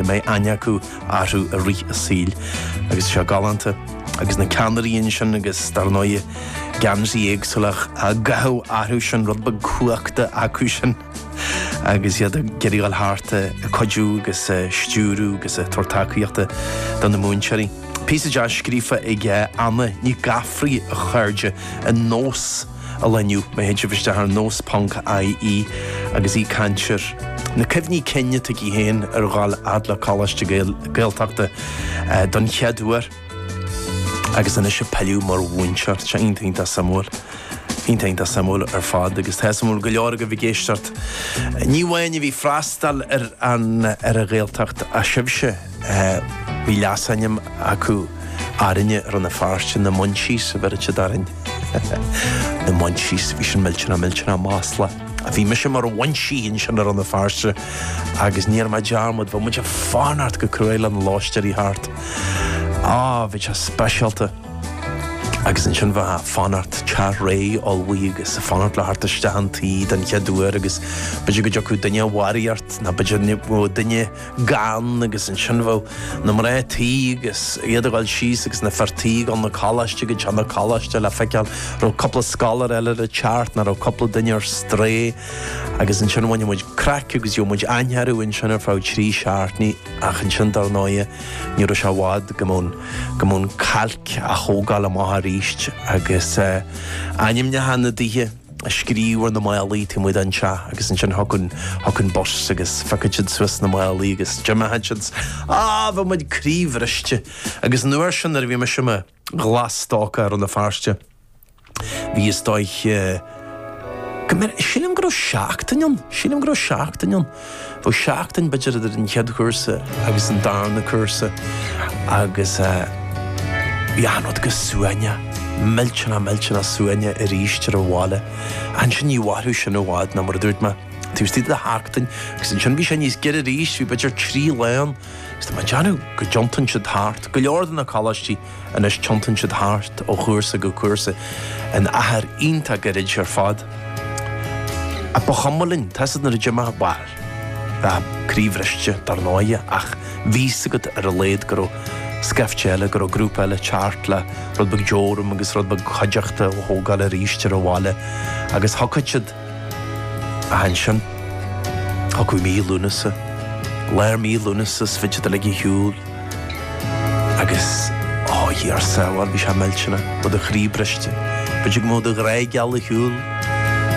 mbeidh aithne acu orthu i rith a saoil agus seo galánta agus na ceannairí ansin agus dar ndóigh geansaithe éagsúla á gcaitheamh orthu sin rud beag cumhachta acu sin agus iad ag geireadháil thart ag cuidiú agus ag stiúradh agus ag tabhairt tacaíochta do na múinteoirí. Píosa deas scríofa ag Anna Nic Gafraidh a chairde, ar Nós. a loinniú. Má théann sibh isteach ar nós ponc IE agus í ag caint ar na cuimhní cinn atá aici féin ar dhul a fhad le coláiste Gael, Gaeltachta don chéad uair agus anois ag pilleadh mar mhúinteoir. Seo iontach iontach suimiúil, iontach iontach suimiúil ar fad agus tá suimiúil go leor agaibh ag éisteacht, ní amháin a bhí ag freastal ar an, ar an Ghaeltacht ach sibhse. Bhí leasainm acu orainne i Rann na Feirste, na Munchies a bheireadh siad orainn. Na Munchies, bhí sin millteanach millteanach maslach. Bhí mise mar Mhunchie ansin i Rann na Feirste agus ní dhearn mé dearmad, bheadh muid ag fanacht go cruaidh le na lóistéirí a theacht. Á, bhí sé speisialta. Agus ansin bheith ag fanacht, teach réidh ullmhaithe agus ag fanacht leo a theacht isteach an tí den chéad uair agus b'fhéidir go dtiocfadh duine de bharraíocht ná b'fhéidir go raibh duine gann agus ansin bheadh na mná tí agus iad ag dul síos agus na fir tí ag dul na coláiste go dtí na coláiste le feiceáil an raibh cúpla scoláire eile ag teacht ná raibh cúpla duine ar strae agus ansin bhain muid craic agus gheobhadh muid aithne orthu ansin ar feadh trí seachtainí ach ansin dar ndóighe ní raibh sé i bhfad go mbeadh an, go mbeadh an cailc á thógáil amach arís agus eh ainmneacha na dtithe. á scríobh ar na málaí, tá muid anseo agus ansin thiocfadh an, thiocfadh an bus agus phiocfadh siad suas na málaí agus d'imeodh siad, á bheadh muid croíbhriste agus an uair sin nuair a bhí mise i mo ghlas-stócach i Rann na Feirste bhí is dóich go mbeadh sílim go raibh seachtain ann sílim go raibh seachtain ann. Bhí seachtain b'fhéidir idir an chéad chúrsa agus an darna cúrsa agus bhí achan rud go suaimhneach, millteanach millteanach suaimhneach aríst ar an bhaile. Ansin ní mhairfeadh sin i bhfad ná mar a dúirt mé, taobh istigh de sheachtain agus ansin bhí sé níos giorra aríst, bhí b'fhéidir trí lá ann agus tá mé ag déanamh go dtiontaíonn siad thart, go leor de na coláistí. Anois tiontaíonn siad thart ó chúrsa go cúrsa in achar iontach gairid ar fad. Ach ba chuma linn, tá's agat nuair a d'imigh, bhuel, bhí croíbhriste, dar ndóighe, ach bhí's agat ar a laghad go raibh scaifte eile, go raibh grúpa eile ag teacht le rud beag deoram agus rud beag cuideachta a thógáil aríst ar an bhaile agus shocraigh siad Ansin, thiocfadh mí Lúnasa, lár mí Lúnasa, is bhí siad uilig ar shiúl, agus ó Dia ár sábháil bhí sé millteanach, ó do chroí briste, b'fhéidir go mbeadh do ghrá geal ar shiúl,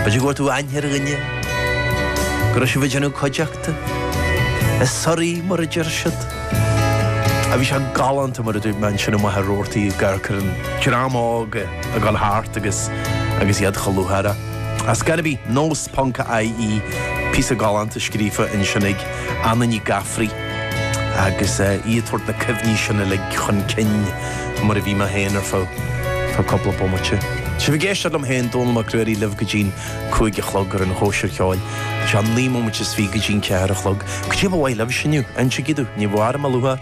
b'fhéidir go bhfuair tú aithne ar dhuine, go raibh sibh ag déanamh cuideachta, is suirí mar a deir siad. Bhí sé galánta mar a dúirt mé ansin i Machaire Rabhartaigh ag amharc ar an dream óg ag dul thart agus iad chomh lúcháireach. Ar scor ar bith nós. ie píosa galánta scríofa ansin ag Anna Ní Ghafraidh agus í ag tabhairt na cuimhní sin uilig chun cinn mar a bhí mé féin ar feadh cúpla bomaite. Sibh ag éisteacht liom féin, Dónall Mac Ruairí, libh go dtí'n cúig a chlog ar an Chóisir Cheoil. Seo naoi mbomaite is fiche go dtí'n ceathair a chlog. Caidé ba mhaith libhse inniu, insigí domh, ní mhairim a luaithe.